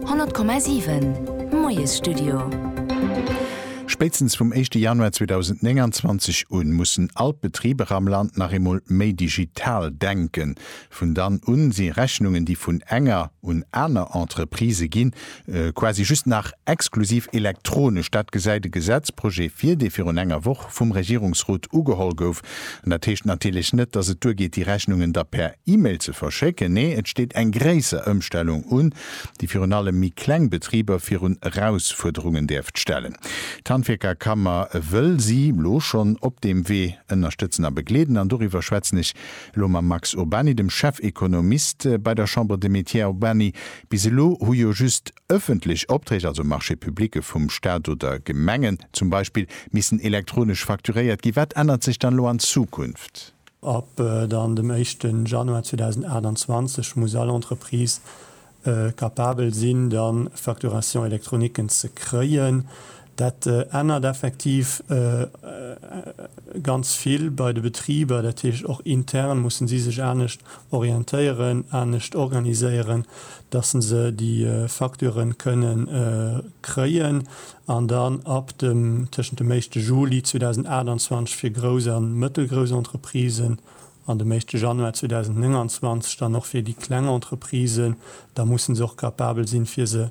100,7 Moiesstudio. Spéitstens vum éischte Januar 2029 un mussen all d'Betriber am Land nach eemol méi digital denken. Vun dann un si Rechnungen, déi vun enger un aner Entreprise ginn, quasi just nach exklusiv elektronesch. Dat gesäit e Gesetzprojet vir, dee virun enger Woch vum Regierungsrot ugeholl gouf An dat heescht natierlech net, dass et duergeet, déi Rechnungen da per E-Mail ze verschécken. Nee, et steet eng gréisser Ëmstellung un, déi virun allem méi kleng Betriber virun Erausfuerderungen däerft stellen. D'Handwierkerkammer wëll si elo schonn op deem Wee ënnerstëtzen a begleeden. An doriwwer schwätzen ech elo mam Max Urbany, dem Chefekonomist bei der Chambre des Métiers. Här Urbany, bis elo hu jo just Ëffentlech Opträg, also Marchés publique vum Staat oder Gemengen zum Beispill, missen elektronesch facturéiert ginn. Wat ännert sech dann elo an Zukunft? Ab dann dem éischte Januar 2028 muss all Entreprise capabel sinn, dann Facturation électronique ze kréien. Dat ännert effektiv ganz vill bei de Betriber. Dat heescht, och intern mussen si sech anescht orientéieren, anescht organiséieren, dass se se, déi Facturë kënne kréien an dann ab dem, tëschent dem éischte Juli 2028 fir grouss a mëttelgrouss Entreprisen an dem éischte Januar 2029 dann och fir déi kleng Entreprisen, da mussen se och capabel sinn, fir se,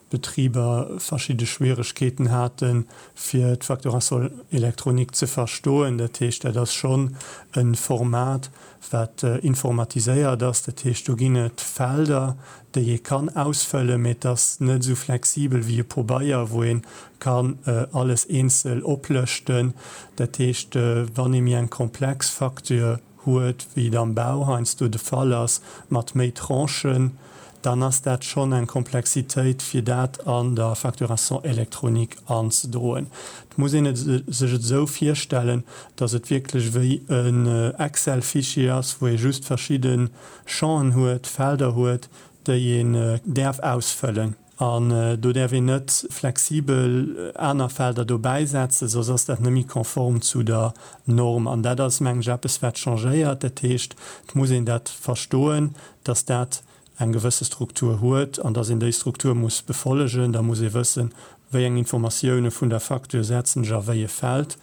Betriber verschidde Schwieregkeeten hate fir d'Facturation électronique ze verstoen. Dat heescht, dat ass schonn e Format, wat informatiséiert ass. Dat heescht, do ginn et Felder, déi ee kann ausfëllen, mee et ass net esou flexibel wéi e Pobeier, wou ee kann alles eenzel oplëschten. Dat heescht, wann ee méi eng komplex Facture huet, wéi et am Bau heiansdo de Fall ass, mat méi Tranchen, dann ass dat schonn eng Komplexitéit, fir dat an der Facturation électronique anzedroen. Et muss een et sech et esou virstellen, datt et wierklech wéi en Excel-Fichier ass, wou ee just verschidde Champen huet, Felder huet, déi een däerf ausfëllen. An do däerf een net flexibel aner Felder dobäi setzen, soss ass dat net méi konform zu der Norm. An dat ass, mengen ech, eppes, wat changéiert. Dat heescht, et muss een dat verstoen, dass dat eng gewësse Struktur huet an dass een déi Struktur muss befollegen. Da muss ee wëssen, wéi eng Informatioune vun der Facture setzen ech a wéi e Feld.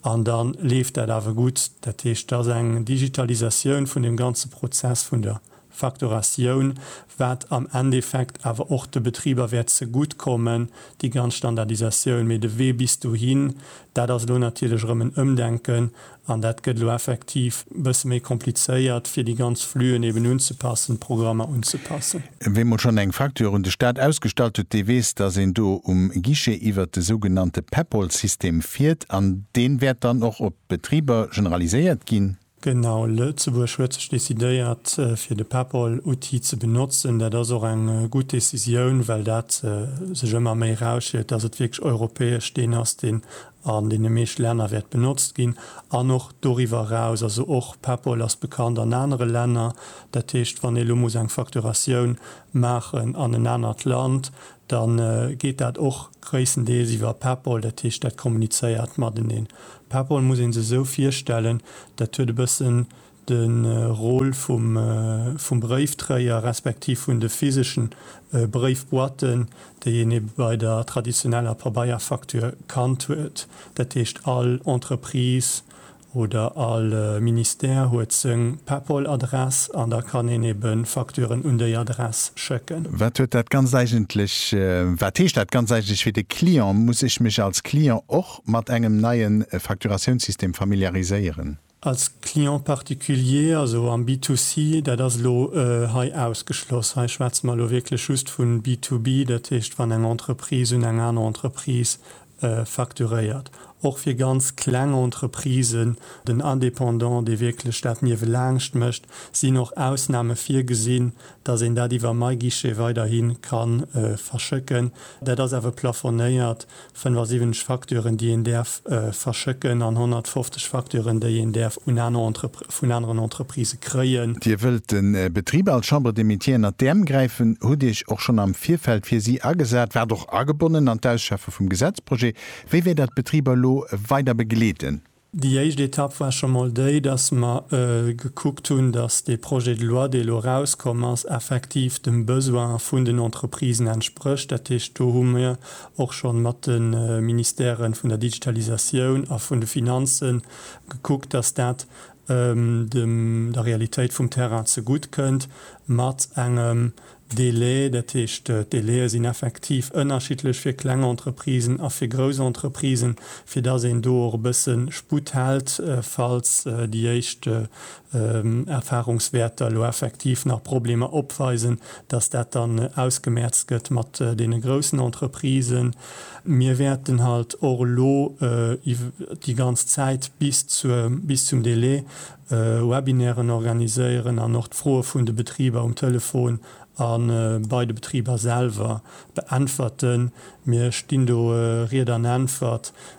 An da leeft dat awer gutt. Dat heescht, et ass eng Digitalisatioun vun deem ganze Prozess vun der Facturatioun, wat am Endeffekt awer och de Betriber wäert zegutt kommen, déi ganz Standardisatioun. Mee de Wee bis dohin, dat ass elo natierlech erëm en Ëmdenken an dat gëtt elo effektiv e bësse méi komplizéiert, fir déi ganz Flüen eben unzepassen, d'Programmer unzepassen. Ween emol schonn eng Facture un de Staat ausgestallt huet, dee weess, dass een do um Guichet iwwert de sougenannte Peppol-System fiert an deen wäert dann och op d'Betriber generaliséiert ginn. Genau, Lëtzebuerg huet sech decidéiert fir de PEPAL-Outil ze benotzen. Dat ass och eng gutt Decisioun, well dat sech ëmmer méi erausstellt, dass et wierklech europäesch deen ass, deen an deene meescht Länner wäert benotzt ginn an och doriwwer eraus. Also och PEPAL ass bekannt an anere Länner. Dat heescht, wann ee lo muss eng Facturatioun maachen an en anert Land, da geet dat och gréisstendeels iwwer PayPal, dat heescht, dat kommunizéiert mateneen. PayPal muss ee se esou virstellen, dat huet e bëssen de Rôle vum Bréiftréier respektiv vun de physeschen Bréifboîten, déi een ebe bei der traditioneller Pabeierfacture kannt huet, dat heescht all Entreprise, oder all Ministère huet seng PayPal-Adress an da kann een ebe Facturen un déi Adress schécken. Wat huet dat Ganzt eigentlech, wat heescht dat Ganzt eigentlech fir de Client? Muss ech mech als Client och mat engem neie Facturatiounssystem familiariséieren? Als Client particulier, also am B2C, dat ass elo hei ausgeschloss. Hei schwätze mer elo wierklech just vu B2B, dat heescht wann eng Entreprise un eng aner Entreprise facturéiert, och fir ganz kleng Entreprisen, den Indépendant, dee wierklech dat niewelaangscht mécht, sinn och Ausname virgesinn, dass een dat iwwer MyGuichet weiderhi ka verschëcken. Dat ass awer plafonéiert, 75 Facturen, déi een däerf verschëcken an 150 Facturen, déi een däerf un aner Entreprises. vun aneren Entreprisë kréien. Dir wëllt de Betriber als Chambre des Métiers ënnert d'Äerm gräifen, hutt Iech och schonn am Virfeld fir si agesat, waart och agebonnen an d'Ausschaffe vum Gesetzprojet. Wéi wäert Der d'Betriber elo weider begleeden? Déi éischt Etapp war scho mol déi, dass mer gekuckt hunn, dass dee Projet de loi, dee elo erauskomm ass, effektiv dem Besoin vun den Entreprisen entsprécht. Dat heescht, do hu mir och schonn mat de Ministèren vun der Digitalisatioun a vun de Finanzen gekuckt, dass dat dem der Realitéit vum Terrain zegutt kënnt, mat engem Délai, dat heescht, d'Délaie sinn effektiv ënnerschiddlech fir kleng Entreprisen a fir grouss Entreprisen, fir dass een do och e bësse Sputt hält, falls déi éischt Erfahrungswärter elo effektiv nach Problemer opweisen, dass dat dann ausgemerzt gëtt mat deene groussen Entreprisen. Mir wäerten halt och elo déi ganz Zäit bis zur, bis zum Délai Webinairen organiséieren an och d'Froe vun de Betriber um Telefon a bei de Betriber selwer beäntwerten. Mir stinn do Ried an Äntwert.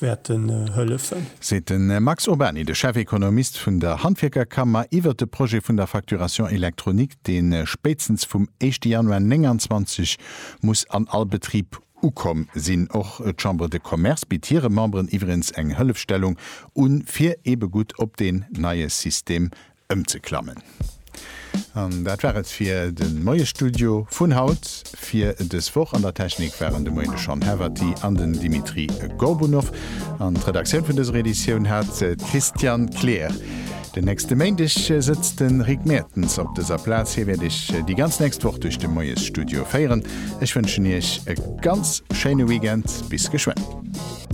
wäerten hëllefen. Seet de Max Urbany, de Chefekonomist vun der Handwierkerkammer, iwwert de Projet vun der Facturation électronique, dee spéitstens vum éischte Januar 29 muss an all Betrib ukomm sinn. Och d'Chambre de Commerce bitt hire Memberen iwwregens eng Hëllefstellung un, fir eebe gutt op deen neie System ëmzeklammen. An dat war et fir de Moiestudio vun haut, fir dës Woch. An der Technik waren de Moien de Sean Heverty an den Dimitri Gorbunov. An d'Redaktioun vun dëser Editioun hat d'Christiane Kleer. Den nächste Méindeg sëtzt de Rick Mertens op dëser Plaz. Hie wäert Iech déi ganz nächst Woch duerch de Moiesstudio féieren. Ech wënschen Iech e ganz schéine Weekend. Bis geschwënn.